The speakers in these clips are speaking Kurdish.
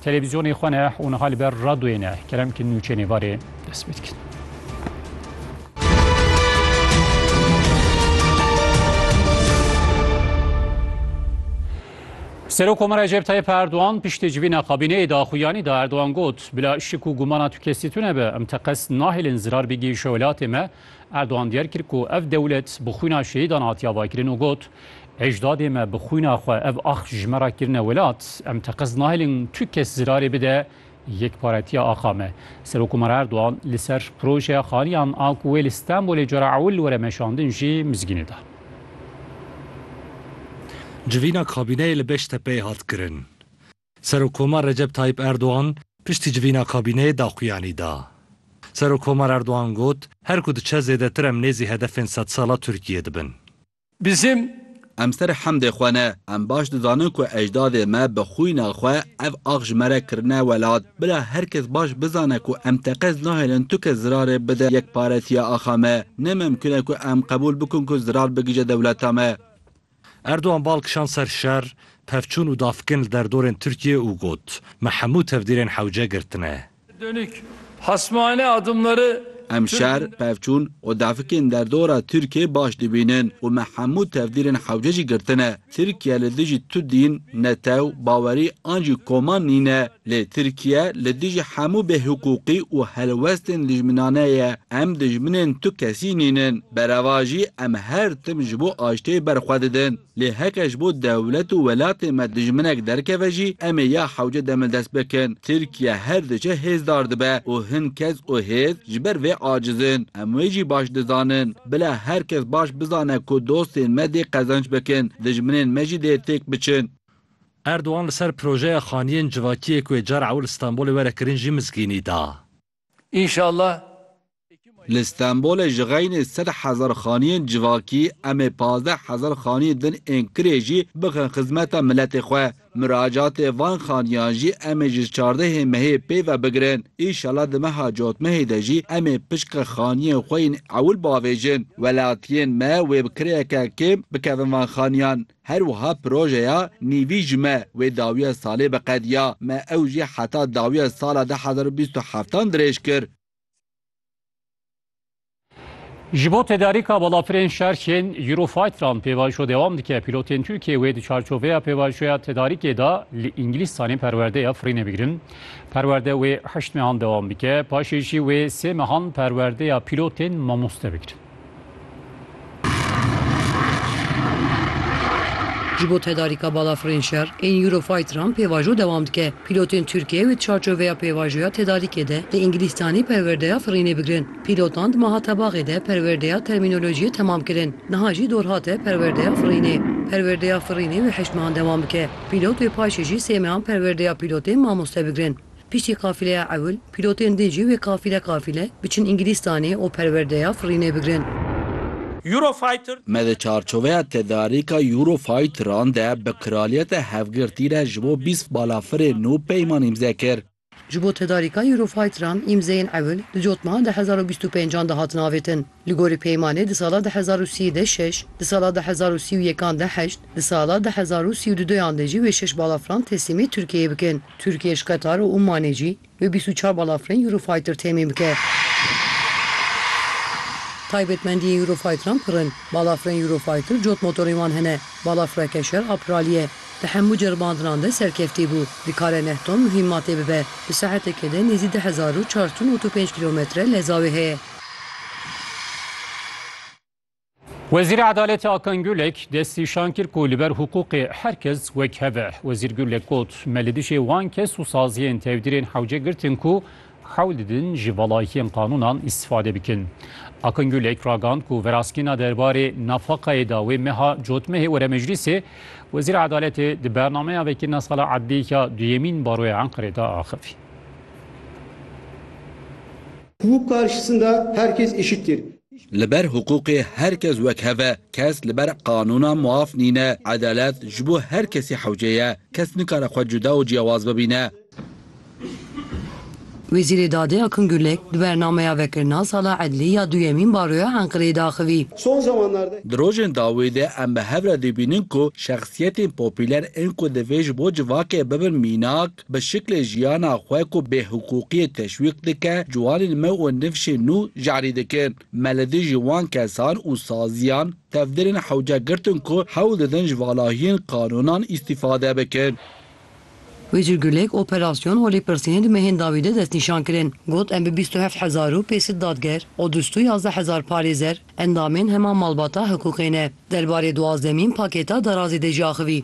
Televîzyonê xwe ne û niha li ber radyoyê ne kerem ki nûçeyê nêvarê dest pê dikin. Serok Komara Recep Tayyip Erdoğan piştê civîna kabîneyê de axuyanî da Erdoğan got bila şik û gumana tu kesî tune be em teqes nahêlin zirar bigihîşe welatê me Erdogan diyar kir ku ev dewlet bi xwîna şehîdan hatiya vakirin û got, Ejdadê me bi xwîna xwe ev ax ji me re kirine welat. Em teqez nahêlin tu kes zirarê bide yekparetiya axa me. Serokkomar Erdogan li ser projeya xaniyan a ku wê li Stenbolê cara ewil were meşandin jî mizgînê da. Civîna kabîneyê li Beştepeyê hat kirin. Serokkoma Recep Tayyîp Erdogan piştî civîna kabîneyê daxuyanî da. Serokkomar Erdogan got, Her ku diçe zêdetir em nêzî hedefên sedsala Tirkiyê dibin. Bizim Em serê hemdê xwe ne. Em baş dizanin ku ejdadê me bi xwîna xwe ev ax ji me re kirine welat. Bila her kes baş bizane ku em teqez nahêlin tu kes zirarê bide yekparetiya axa me. Nememkun e ku em qebûl bikin ku zirar bigije dewleta me. Erdogan bal kişand ser şer, pevçûn û davkin li derdorên Tirkiyeyê û got, Me hemû tevdîrên hewce girtine. Em şer, pevçûn û dafikên derdora Tirkiyeyê baş dibînin û me hemû tevdîrên hewce jî girtine. Tirkiye li dijî tu dîn, netew, bawerî an jî koman nîne. Lê Tirkiye li dijî hemû bêhiqûqî û helwestên dijminane ye. Em dijminên tu kesî nînin. Bereva jî em her tim ji bo aştiyê ber xwe didin. Lê heke ji bo dewlet û welatê me dijminek derkeve jî em ê ya hewce demil dest bikin. Tirkiye her diçe hêzdar dibe û hin kes û hêz ji ber vê aciz in. Em wê jî baş dizanin. Bila her kes baş bizane ku dostên me dê qezenç bikin, dijminên me jî dê têk biçin. Erdogan li ser projeya xaniyên civakiyê ku yê cara ew li Stenbolê were kirin jî mizgînî da. Înşallah. Li Stenbolê ji xeynê sed hezar xaniyên civakî em ê pazdeh hezar xaniyên din ên kirê jî bixin xizmeta miletê xwe. Miracatê van xaniyan jî em ê ji çardehê mehê pê ve bigirin. Înşallah di meha cotmehê de jî em ê pişka xaniyên xwe yên ewil biavêjin. Welatiyên me wê bi kirêyeke kêm bikevin van xaniyan. Her wiha projeya nîvî ji me wê dawiya salê biqediya. Me ew jî heta dawiya sala du hezar û bîst û heft an dirêj kir. Ji bo tedarîka balafirên şerxên Eurofighteran pêvajo dewam dike. Pîlotên Tirkiyê wê di çarçoveya pêvajoya tedarîkê de li Îngilîzstanê perwerdeya firînê bigirin. Perwerde wê heşt mehan dewam bike, paşê jî wê sê mehan perwerdeya pîlotên mamoste bigirin. Ji bo tedarîka balafirên şer ên Eurofighteran pêvajo dewam dike. Pîlotên Tirkiyeyê di çarçoveya pêvajoya tedarîkê de li Îngilîstanê perwerdeya firînê bigirin. Pîlotan di maha tebaxê de perwerdeya termînolojiyê temam kirin. Niha jî dor hate perwerdeya firînê. Perwerdeya firînê wê heşt mehan dewam bike. Pîlot wê paşê jî sê mehan perwerdeya pîlotên mamoste bigirin. Piştî qafileya ewil, pîlotên din jî wê qafîle qafîle biçin Îngilîstanê û perwerdeya firînê bigrin. Eurofighter. Me di çarçoveya tedarîka Eurofighteran de bi Kraliyeta Hevgirtî re ji bo bîst balafirên nû peyman îmze kir. Ji bo tedarîka Eurofighteran îmzeyên ewil di cotmehan di hezar û bîst û pêncan de hatin avêtin. Li gorî peymanê di sala du hezar û sî de şeş, di sala du hezar û sî û yekan de heşt, di sala du hezar û sî û du duyan de jî wê şeş balafran teslîmê Tirkiyeyê bikin. Tirkiye ji Qetar û Omanê jî wê bîst û çar balafirên Eurofighter temîn bike. Taybetmendiyên Eurofighteran pir in. Balafirên Eurofighter cot motorên wan hene. Balafireke şer a piralî ye. Di hemû ceribandinan de serkeftî bû. Dikare neh ton muhîmmatê bibe. Di saetekê de nêzî du hezar û çar tûn û tu pênc kîlometre leza wê heye. Wezîrê Edaletê Akan Gulek destî şan kir ku li ber hiqûqê her kes wek hev e. Wezîr Gulek got, Me li dijî wan kes û saziyên tevdîrên hewce girtin ku hewl didin ji velayîtiyên qanûnan îstîfade bikin. Akan Gulek ragand ku veraskêna derbarê nafaqayê da wê meha cotmehê were meclîsê. Wezîra Edaletê di bernameya vekirina sala edlîyê ya duyemîn baroya Enqerê de axivî. Hukuk karşısında herkes eşittir. Li ber hukukê her kes wek hev e. Kes li ber qanûna muaf nîne. Edalet ji bo her kesî hewce ye. Kes nikare xwe cuda û ciyawaz bibîne. Wezîrê Dadê Akın Gürlek di bernameya vekirina Sala Edlî ya duyemîn baroya Enqireyê de axivî. Son zamanlarda. Di rojên dawî de em bi hev re dibînin ku şexsiyetên popûler ên ku divê ji bo civakê bibin mînak, bi şiklê jiyana xwe ku bêhiqûqiyê teşwîq dike, ciwanên me û nifşên nû jarî dikin. Me li dijî wan kesan û saziyan tevdirên hewce girtin ku hewl didin ji valahiyên qanûnan îstîfade bikin. Wê jî gulek operasyon û lêpirsînên di mehên dawî de destnîşan kirin. Got, Em bi bîst û heft hezar û pêncset dadger û du sed û yazdeh hezar parêzer endamên hema malbata hiqûqê ne. Derbarê duwazdemîn pakêta derazê de jî axivî.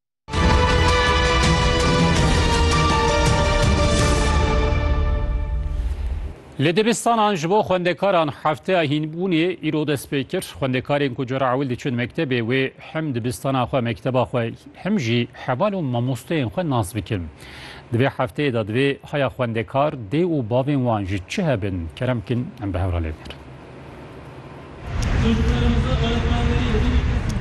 Li dibistanan ji bo xwendekaran hefteya hînbûnê îro dest pê kir. Xwendekarên ku cara ewil diçin mektebê wê him dibistana xwe mekteba xwe him jî heval û mamosteyên xwe nas bikin. Di vê hefteyê de divê haya xwendekar, dê û bavên wan ji çi hebin? Kerem Kin em bi hev re lê dikin.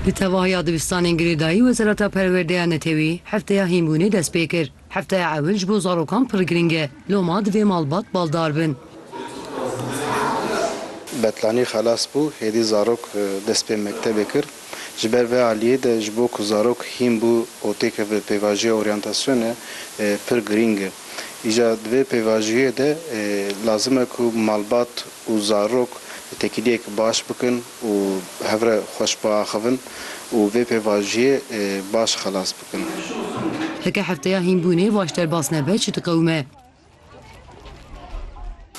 Di tevahiya dibistanên girêdayî Wezareta Perwerdeya Netewî hefteya hînbûnê dest pê kir. Hefteya ewil ji bo zarokan pir girîng e. Loma divê malbat baldar bin. Betlanî xelas bû, hêdî zarok dest pê mektebê kir. Ji ber vê aliyê de ji bo ku zarok hîn bû û têkeve pêvajiya oryantasyonê pir girîng e. Îja di vê pêvajiyê de lazim e ku malbat û zarok têkiliyek baş bikin û hev re xweş biaxivin û vê pêvajiyê baş xelas bikin. Heke hefteya hînbûnê baş derbas nebe çi diqewime.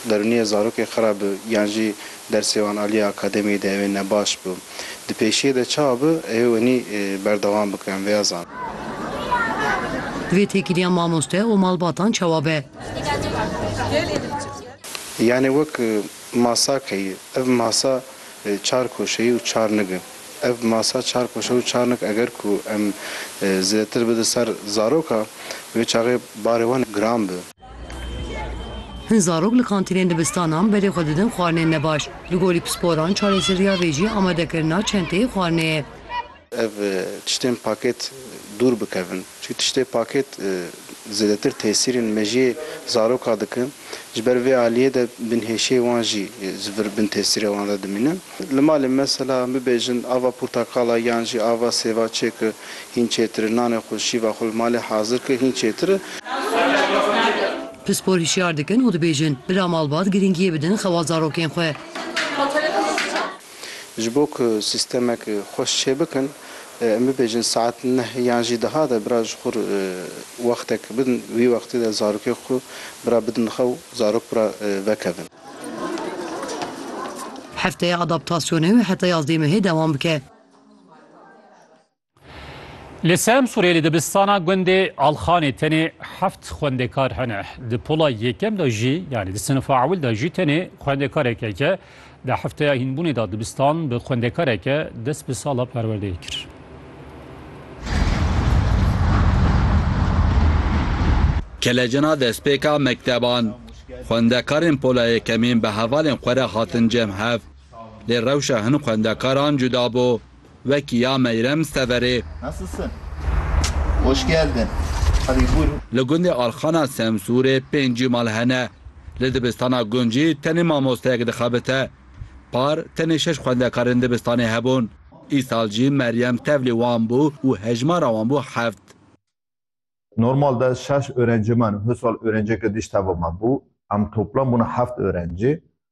Derûniyê zarokê xera bi yan jî dersê wan aliyê akademiyê de ew ê ne baş bi. Di pêşiyê de çawa bi ew ê wenî berdewam bike em vêya zan. Divê têkiliya mamoste û malbatan çawa be? Yanê wek masa keyî. Ev masa çar koşeyî û çar nig in. Ev masa çar koşer û çar nik eger ku em zêdetir bide ser zaroka wê çaxê barê wan giran bi. Hin zarok li kantînên dibistanan berê xwe didin xwarinên nebaş. Li gorî pisporan çarêseriya vê jî amadekirina çenteyê xwarinê ye. Ev tiştên pakêt dûr bikevin. Çi tiştê pakêt zêdetir tesîrên mejiyê zaroka dikin. Ji ber vê aliyê de binhêşiyê wan jî ji vir bin tesîrê wan de dimîne. Li malê mesela em bibêjin ava portekala yan jî ava sêva çêke hîn çêtir e. Nanê xwe, şîva xwe li malê hazir ke hîn çêtir e. Pispor hişyar dikin û dibêjin, bila malbat girîngiyê bidin xewa zarokên xwe. Ji bo ku sîstemek xweş çêbikin, em bibêjin saet neh yan jî duha de bira ji xwe re wextek bidin, wî wextê de zarokê xwe bira bidin xew, zarok bira vekevin. Hefteya adaptasyonê heta yazdê mehê dewam bike. Li Semsûrê li dibistana gundê Alxanê tenê heft xwendekar hene. Di pola yekem de jî yanî di sinifa ewil de jî tenê xwendekarek heke. Di hefteya hînbûnê de dibistan bi xwendekareke dest bi sala perwerdeyê kir. Kelecina destpêka mekteban, xwendekarên pola yekemîn bi hevalên xwe re hatin cem hev. Lê rewşa hin xwendekaran cuda bû. Wekî ya Meyrem Severê. Nasılsın? Hoş geldin. Hadi buyurun. Li gundê Alxana Semsûrê pêncî mal hene. Li dibistana Guncî tenê mamosteyek dixebite. Par tenê şeş xwendekarên dibistanê hebûn. Îsal jî Meryem tevlî wan bû û hejmara wan bû heft. Normal de şeş öğrencî me ne, husal öğrenceke dî ji tevê me bû. Em toplam bûne heft öğrencî.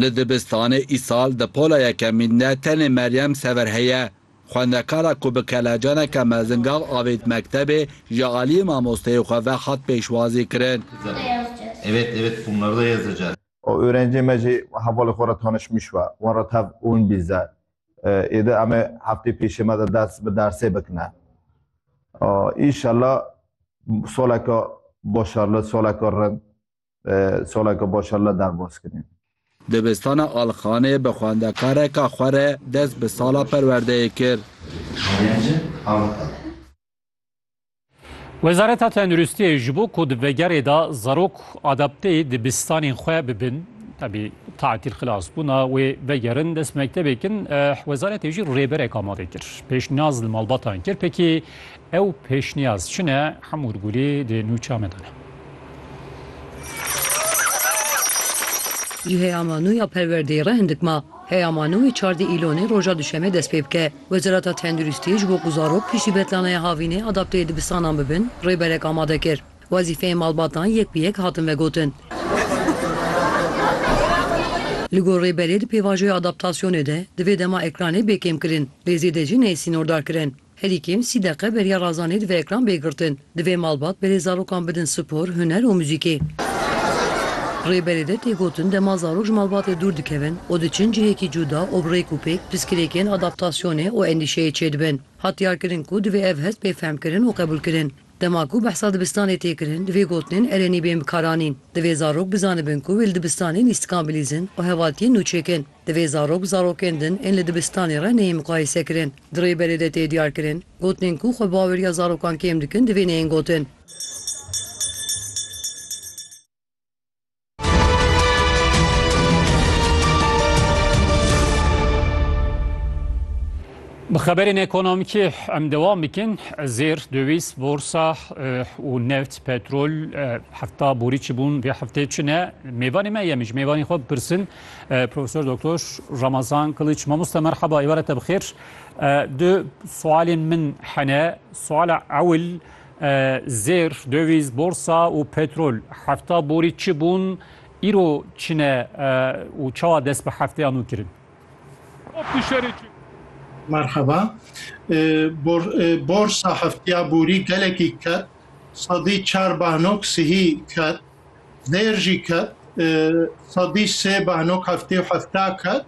Li dibistanê îsal di pola yekemîn de tenê Meryem Sever heye. Xwendekara ku bi kelecaneke mezin gav avêt mektebê ji aliyê mamosteyê xwe ve hat pêşwazî kirin. Oerencê me jî hevalê xwe re tanişmiş we. Wan re tev ûn bîze. Êde em ê heftê pêşê me de dest bi dersê bikine. Înşella saleke başarli, saleke rind Soleke baş Allah derbas kinê. Dibistana Alxanê bi xwendekareka xwe re dest bi sala perwerdeyê kir. Wezareta Tenduristiyê ji bo ku di vegerê de zarok adapteyê dibistanên xwe bibin, tevî tatîl xilas bûna wê vegerin dest mektebê kin, wezaretê jî rêberek amade kir. Pêşniyaz li malbatan kir pkê Ew pêşniyaz çi ne hemûr gulî di nûça me de ne. Ji heyama nû ya perwerdeyê re hindik ma. Heyama nû ê çar di Îlonê roja duşemê dest pê bike. Wezareta Tenduristiyê ji bo ku zarok piştî betlanaya havînê adapteyê dibistanan bibin, rêberek amade kir. Wezîfeyên malbatan yek bi yek hatin vegotin. Li gor rêberê di pêvajoya adaptasyonê de divê dema ekranê bê kêmkirin, lê zêde jî neyê sînordarkirin. Herî kêm sî deqe beriya Razanê divê ekran bê girtin. Divê malbat berê zarokan bidin spor, huner û muzîkê. Rêberê de tê gotin dema zarok ji malbatê dûr dikevin û diçin cihekî cûda û bi rêk û pêk piskirêkên adaptasyonê û endîşeyê çêdibin. Hat diyarkirin ku divê ev hest bê fehmkirin û qebûlkirin. Dema ku behsa dibistanê tê kirin divê gotinên erenî bên bikaranîn. Divê zarok bizanibin ku wê li dibistanê lîstikan bilîzin û hevaltiyên nû çêkin. Divê zarok zarokên din ên li dibistanê re neyên muqayesekirin. Di rêberê de tê diyarkirin, gotinên ku xwebaweriya zarokan kêm dikin divê neyên gotin. Bi xeberên ekonomîkê em dewam bikin. Zêr, döwîz, borsa û neft, petrol hefta borî çi bûn vê heftê çi ne? Mêvanê me yem ji mêvanê xwe bipirsin Profesör Doktor Ramazan Kılıç. Mamosta merhaba, êvara te bixêr. Du sualên min hene. Suala ewil zêr, döviz, borsa û petrol. Hefta borî çi bûn, îro çi ne û çawa dest bi hefteya nû kirin? Merhaba. Bor, borsa hefteya borî gelekî ket. Sedî çar bahno sihî ket. Zêr jî ket, sedî sê behnok heftê û hefta ket,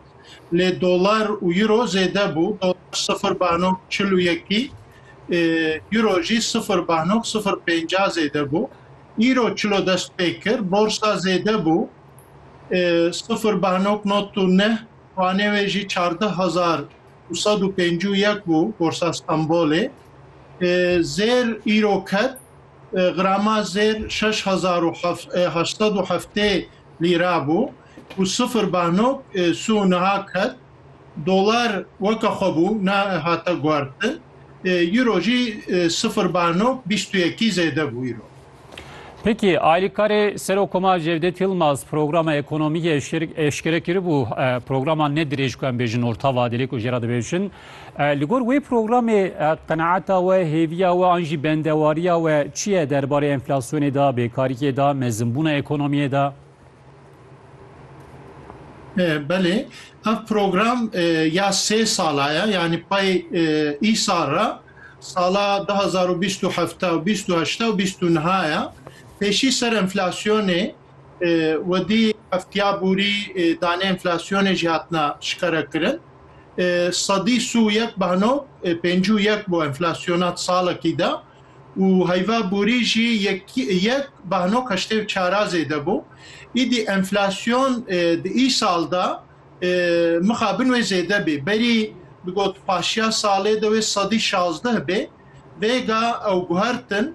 lê dolar û euro zêde bû, dolar sifir behnok çil û yekî, euro jî sifir behnok sifir pênca zêde bû. Îro çilo dest pê kir, borsa zêde bû, sifir behnok not û neh, wanê wê jî çardeh hezar û sed û pêncî û yek bû, borsa Stenbolê. Zêr îro ket, Grama zêr şeş hezar û heşt sed û heftê lîra bû û sifir bahnok sû niha ket. Dolar weke xwe bû ne hate guhertin. Euro jî sifir bahnok bîst û yekî zêde bû îro. Peki Aylîkarê Serokoma Cevdet Yilmaz programa ekonomî eşkere kiribû, programa ne dirêj ku em bêjin orta vadeli ku jê re dibêjin. Li gor wê programê qenaeta we, hêviya we an jî bendewariya we çi ye derbarê enflasyonê de, bêkariyê de, mezinbûna ekonomiyê de? Belê, ev program ya sê sala ye, yanî pay îsal re sala du hezar û bîst û heft bîst û heşt bîst û niha ye, pêşî ser enflasyonê, Wêdî heftiya borî danê enflasyonê jî hatine şikarekirin. Sedî sî û yek bano pêncî û yek bo enflasyona di salekî de û heyva borî jî yek bano heştê û çara zêde bo. Îdî enflasyon di îsal de mixabin wê zêde bê. Berî digot paşiya salê de wê sedî şazdeh bê. Vêga ew guhertin.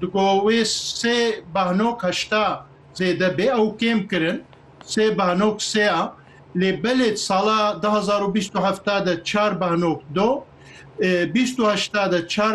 Digo wê sê behnok heşta zêde bê ew kêm kirin sê behnok sê a lê belê di sala du hezar û bîst û heft de çar behnok do bîst û heşta de çar